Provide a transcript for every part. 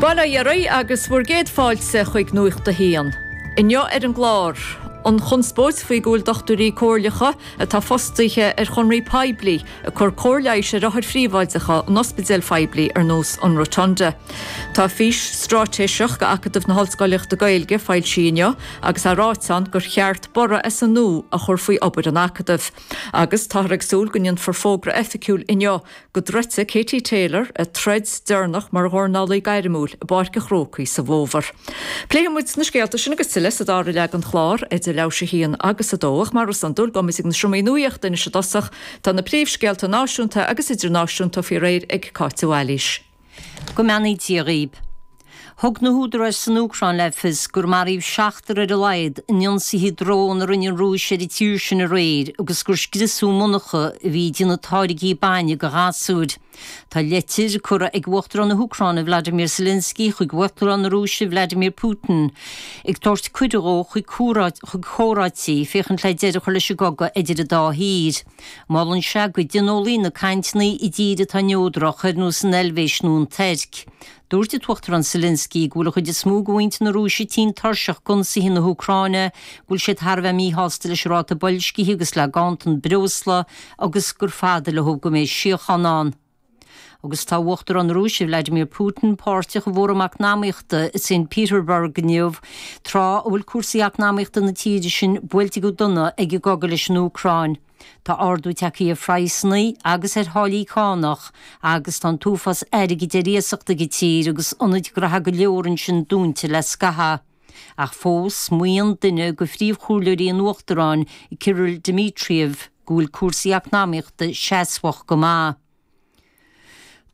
Bail ó Dhia oraibh agus bhur gcéad fáilte chuig Nuacht a hAon. Inniu ar an gclár, an chonspóid faoi go bhfuil dochtúirí comhairleacha atá fostaithe ar chonraí poiblí ag cur cóir leighis ar othair phríobháideacha in ospidéil phoiblí ar nós an Rotunda. Tá fís stráitéiseach d'Acadamh na hOllscolaíochta Gaeilge foilsithe inniu agus tá ráite ann gur cheart borradh as an nua a chur faoi obair an Acadaimh. Agus táthar ag súil go ndéanfar fógra oifigiúil inniu go dtroidfidh Katie Taylor a troid deireanach mar dhornálaí gairmiúil i bPáirc an Chrócaigh sa bhfómhar. Pléifidh muid na scéalta sin agus tuilleadh sa dara leath den chlár, idir leathuair tar éis a haon agus a dó, ach mar is iondúil, gabhfaidh muid ag na seomraí nuachta anois i dtosach. Tá na príomhscéalta náisiúnta agus idirnáisiúnta faoi réir ag Cáit de Bhailís. Go mbeannaí Dia dhaoib. Thug na húdaráis san Úcráin le fios gur maraíodh seachtar ar a laghad in ionsaithe drón a rinne an Rúis ar an tír sin aréir agus gur scriosadh monarcha a bhí ag déanamh táirgí bainne do ghasúir. Tá leitir curtha ag Uachtarán na hÚcráine Vladimir Zelensky chuig Uachtarán na Rúise Vladimir Putin ag tabhairt cuireadh dhó chuig comhráití féachaint le deireadh a chur leis an gcogadh idir an dá thír. Molann sé go dtionólfaí na cainteanna i dtír atá neodrach, ar nós an Eilvéis nó an Tuirc. Dúirt an tUachtarán Zelensky go bhfuil an chuid is mó de mhuintir na Rúise tinn tuirseach d'ionsaithe na hÚcráine, go bhfuil siad thar a bheith míshásta leis an ráta boilscithe agus le ganntan breosla agus gur fada leo go mbeidh síocháin ann. Agus tá Uachtarán na Rúise, Vladimir Putin, páirteach i bhFóram Eacnamaíochta Saint Petersburg inniu, tráth a bhfuil cúrsaí eacnamaíochta na tíre sin buailte go dona ag an gcogadh leis an Úcráin, tá ardú tagtha ar phraghsanna agus ar tháillí cánach agus tá an t-uafás airgid ar iasacht ag an tír agus ionaid ghnótha go leor ansin dúnta le scaitheamh. Ach fós, maíonn duine de phríomhchomhairleoirí an Uachtaráin, Kirill Dmitriev, go bhfuil cúrsaí eacnamaíochta seasmhach go maith.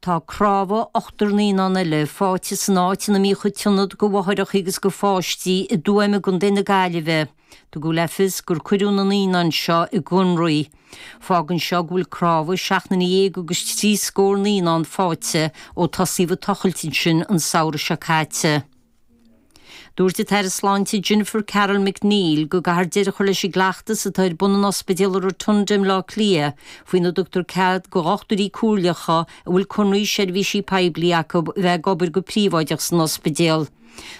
Tá cnámha ochtar naíonán eile fáighte san áit ina mbíodh an t-ionad do mháithreachaí agus do pháistí i dTuaim i gContae na Gaillimhe. Tugadh le fios gur cuireadh na naíonáin seo i gcónraí. Fágann seo go bhfuil cnámha seacht nduine dhéag agus trí scór naíonán fáighte ó tosaíodh ag tochailt ansin an samhradh seo caite. Dúirt an tAire Sláinte Jennifer Carroll MacNeill go gcaithfear deireadh a chur leis an gcleachtas atá ar bun in Ospidéal an Rotunda i mBleá Cliath faoina dtugtar cead do dhochtúirí comhairleacha a bhfuil conradh seirbhísí poiblí acu a bheith ag obair go príobháideach san ospidéal.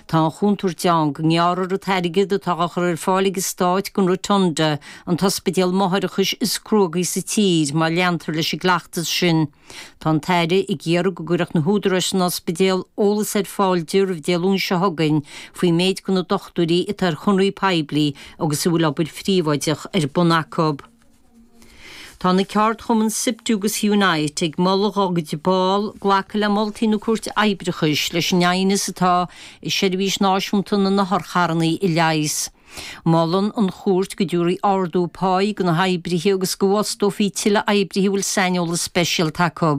Tá an chontúirt ann go ngearrfar an t-airgead atá á chur ar fáil ag an Stát don Rotunda, an t-ospidéal máithreachais is cruógaí sa tír, má leantar leis an gcleachtas sin. Tá an tAire ag iarraidh go gcuirfeadh na húdaráis san ospidéal eolas ar fáil di roimh Dé Luain seo chugainn faoin méid de na dochtúirí atá ar chonradh poiblí agus a bhfuil obair phríobháideach ar bun acu. Tá na ceardchumainn Siptu agus Unite ag moladh dhá gcuid ball glacadh le moltaí na Cúirte Oibreachais leis an aighneas atá i Seirbhís Náisiúnta na nOtharcharranna a leigheas. Molann an chúirt go dtabharfaí ardú páí go na hoibrithe agus go bhfostófaí tuilleadh oibrithe a bhfuil saineolas speisialta acu.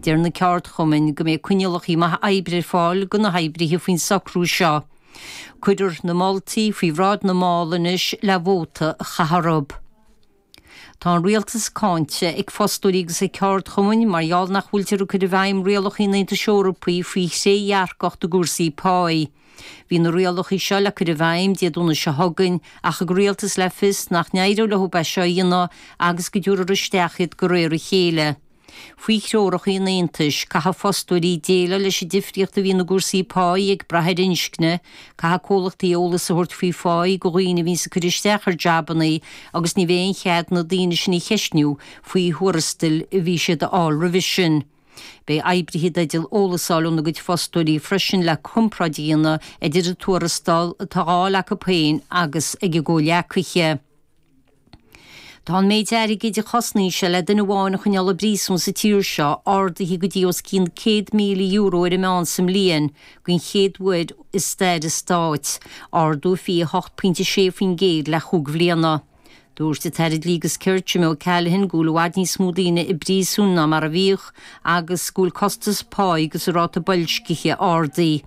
Deir na ceardchumainn go mbeidh coinníollacha maithe oibre ar fáil do na hoibrithe faoin socrú seo. Cuirfear na moltaí faoi bhráid na mball anois le vóta a chaitheamh orthu. Tá an rialtas cáinte ag fostóirí agus ag ceardchumainn mar gheall nach bhfuiltear ag cur i bhfeidhm rialacha an Aontais Eorpaigh faoi thrédhearcacht i gcúrsaí páí. Bhí na rialacha seo le cur i bhfeidhm Dé Domhnaigh seo chugainn ach thug an rialtas le fios nach n-éireodh leo é seo a dhéanamh agus go dtabharfar isteach iad de réir a chéile. Faoi threoracha an Aontais, caithfidh fostóirí déileáil leis an difríocht a bhíonns i gcúrsaí páí ag brath ar inscne, caithfidh comhlachtaí eolas a thabhairt faoi pháí do dhaoine a bhíonns ag cur isteach ar jabanna agus ní bheidh aon chead na daoine sin a cheistniú faoi thuarastail a bhí siad a fháil roimhe sin. Beidh oibrithe i dteideal eolas a fháil óna gcuid fostóirí freisin le comparáid a dhéanamh idir an tuarastal atá a fháil acu féin agus ag a gcomhleacaithe. Tá an méid airgid a chosnaíonn sé le duine amháin a choinneáil i bpríosún sa tír seo ardaithe go dtí os cionn €100,000 ar an meán sa mbliain den chéad uair i stair an stáit, ardú 28.6% le chúig bhliana. Dúirt an tAire Dlí agus Cirt, Jimmy O'Callaghan, go bhfuil i bhfad níos mó daoine i bpríosún ná mar a bhíodh agus go bhfuil costas páí agus an ráta boilscithe ardaithe.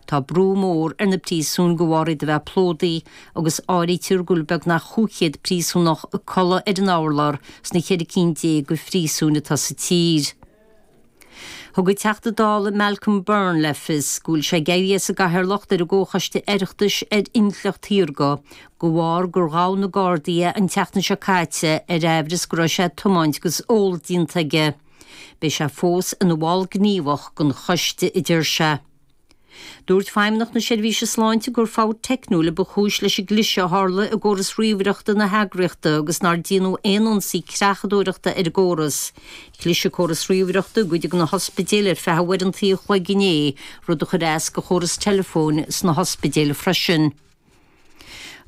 Tá brú mór ar na príosúin de bharr iad a bheith plódaithe agus áirítear go bhfuil beagnach chúigchéad príosúnach ag codladh ar an urlár sna cheithre cinn déag de phríosúin atá sa tír. Thug an Teachta Dála Malcolm Byrne le fios go bhfuil sé ag éirí as an gcathaoirleacht ar an gComhchoiste Oireachtais ar Intleacht Shaorga de bharr gur ghabh na Gardaí é an tseachtain seo caite ar amhras go raibh sé ag tiomáint agus ól déanta aige Beidh sé fós ina bhall gníomhach den choiste, a deir sé. Dúirt Feidhmeannach na Seirbhíse Sláinte gur fabht teicniúil a ba chúis leis an gcliseadh a tharla i gcóras ríomhaireachta na heagraíochta agus nár déanadh aon ionsaí creachadóireachta ar an gcóras. Cliseadh córas ríomhaireachta i gcuid de na hospidéil ar feadh uaireanta a chloig inné, rud a chuir as go chóras teileafóin sna hospidéil freisin.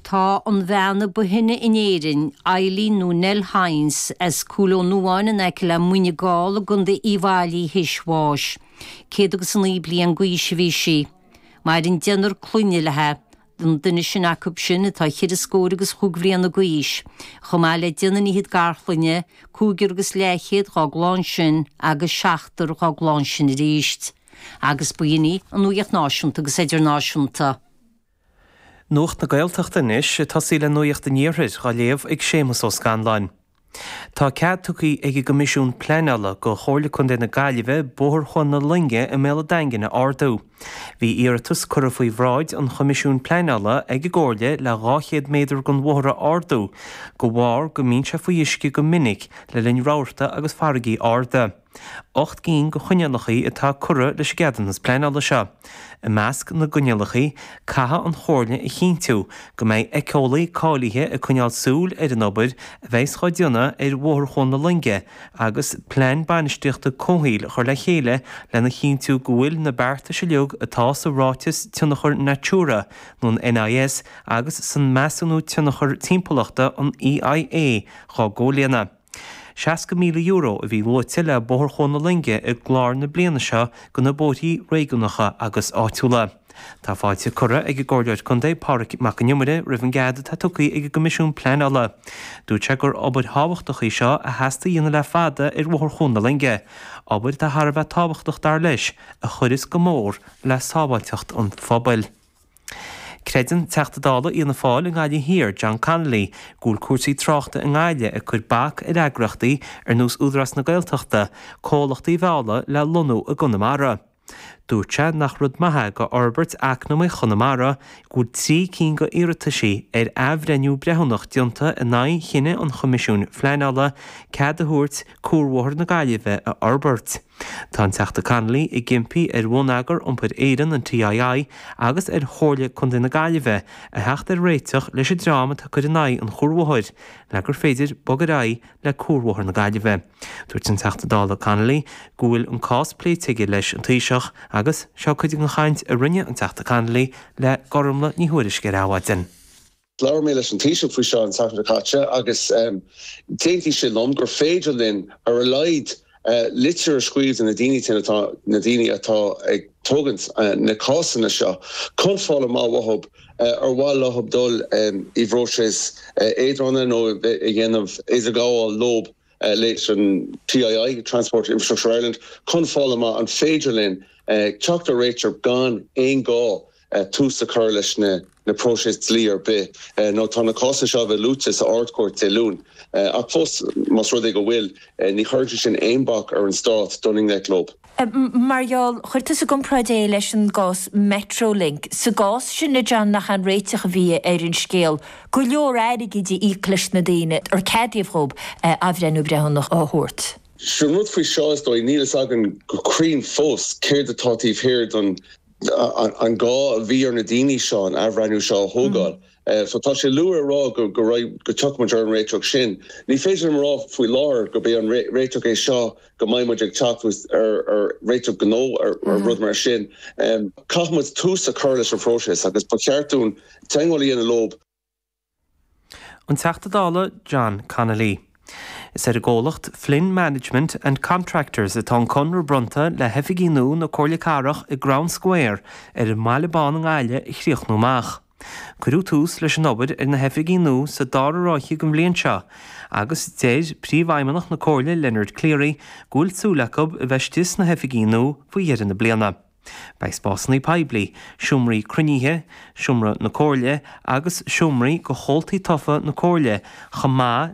Tá an bhean ba shine in Éirinn, Eileen nó Nell Hynes, as Cúil Ó Nuáin in aice le Muine Gall i gContae Uíbh Fhailí thar éis bháis. Céad agus a naoi bliain d'aois a bhí sí. Maireann deichniúr clainne léi, an duine is sine acu sin atá cheithre scór agus chúig bhliana d'aois, chomh maith le deichniúr fhichead garchlainne, cúigear agus leathchéad dhá gclann sin agus seachtar dhá gclann sin arís. Agus b'in í an nuaíocht náisiúnta agus idirnáisiúnta. Nuacht na Gaeltachta anois ag tosaí le nuaíocht an iarthair dhá léamh ag Séamus Ó Scanláin. Tá cead tugtha ag an gCoimisiún Pleanála go Chomhairle Contae na Gaillimhe Bóthar Chuan na Loinge i mBéal an Daingin a ardú. Bhí iarratas curtha faoi bhráid an Choimisiúin Pleanála ag an gComhairle le 200 méadar gon bhóthar a ardú go bharr go mbíonn sé faoi uisce go minic le linn rabhartaí agus farraigí arda. Ocht gcinn go choinníollachaí atá curtha leis an gceadúnas pleanála seo. I measc na gcoinníollachaí, caithfidh an Chomhairle a chinntiú go mbeidh éiceolaí cáilithe ag coinneáil súil ar an obair a bheas á déanamh ar Bhóthar Chuan na Loinge agus plean bainistíochta comhshaoil a chur le chéile lena chinntiú go bhfuil na beartais uilig atá sa Ráiteas Tionchair Natura nó an NIS agus sa Measúnú Tionchair Timpeallachta an EIA dhá gcomhlíonadh. €60,000 a bhí luaite le Bóthar Chuan na Loinge i gclár na bliana seo go na bóithrí réigiúnacha agus áitiúla. Tá fáilte curtha ag an gComhairleoir Contae Pádraic Mac an Iomaire roimh an gcead atá tugtha ag an gCoimisiún Pleanála. Dúirt sé gur obair thábhachtach í seo a theastaigh a dhéanamh le fada ar Bhóthar Chuan na Loinge, obair atá thar a bheith tábhachtach dar leis, a chuirfeas go mór le sábháilteacht an phobail. Creideann Teachta Dála Fhianna Fáil i nGaillimh Thiar, John Connolly, go bhfuil cúrsaí tráchta i nGaillimh ag cur bac ar eagraíochtaí ar nós Údarás na Gaeltachta comhlachtaí a mhealladh le lonnú i gConamara. Dúirt sé nach rud maith é go fhorbairt eacnamaíocht Chonamara go bhfuil trí cinn go iarrataisí ar athbhreithniú breithiúnach déanta in aghaidh chinneadh an Choimisiúin Phleanála cead a thabhairt Cuarbhóthar na Gaillimhe a fhorbairt. Tá an Teachta Connolly ag impí ar Bhonneagar Iompair Éireann, an TII, agus ar Chomhairle Contae na Gaillimhe a theacht ar réiteach leis an dream atá ag cur in aghaidh an chuarbhóthair le gur féidir bog ar aghaidh le Cuarbhóthar na Gaillimhe. Dúirt an Teachta Dála Connolly go bhfuil an cás pléite aige leis an Taoiseach agus seo cuid gon chaint a rinne an Teachta Connolly le Gormlaith Ní Thuairisg ar Adhmhaidin. Labhair mé leis an Taoiseach faoi seo an tseachtain seo caite agus d'aontaigh sé liom gur féidir linn ar a laghad litir a scríobh do na daoine sin atá, na daoine atá ag tógaint na cásanna seo, chun fáil amach uathub ar mhaith leob dul i bpróiseas eadrána nó a dhéanamh idirghabháil leob leis an TII, Transport Infrastructure Ireland, chun fáil amach an féidir linn teacht ar réiteach gan aon ghá tús a chur leis na próisis dlí ar bith, nó tá na cásanna seo a bheith luaite sa Ard-Chúirt go dtí Dé Luain. Ach fós, más rud é go bhfuil, ní chuireann sé sin aon bhac ar an Stát dul i ngleic leob. Mar gheall, chuir tú sa gcomparáid é leis an gcás Metrolink. Sa gcás sin, a John, nach é an réiteach a bhí ar an scéal, go leor airgid a íoc leis na daoine ar ceadaíodh dhób athbhreithniú breithiúnach a thabhairt? Sin rud faoi seo, is dóigh. Níl a fhios againn go cruinn fós céard atá taobh thiar den an gá a bhí ar na daoine seo an athbhreithniú seo a thógáil. So tá sé luath a rá go, go dtiocfaidh muid ar an réiteach sin. Ní féidir liom a rá faoi láthair gurb é an réiteach é seo go mbeidh muid ag teacht ar réiteach nó ar rud mar sin. Caithfidh muid tús a chur leis an phróiseas agus ba cheart dúinn teagmháil a dhéanamh leob, An Teachta Dála John Connolly. Is ar an gcomhlacht Flynn Management and Contractors atá an conradh bronnta le hoifigí nua na Comhairle Cathrach i gCrown Square ar an mBaile Bán i nGaillimh a chríochnú amach. Cuireadh tús leis an obair ar na hoifigí nua sa dara ráithe den bhliain seo agus deir Príomhfheidhmeannach na Comhairle Leonard Cleary go bhfuil súil acu a bheith istigh sna hoifigí nua faoi dheireadh na bliana. Beidh spásanna poiblí, seomraí cruinnithe, Seomra na Comhairle agus seomraí do chomhaltaí tofa na Comhairle, chomh maith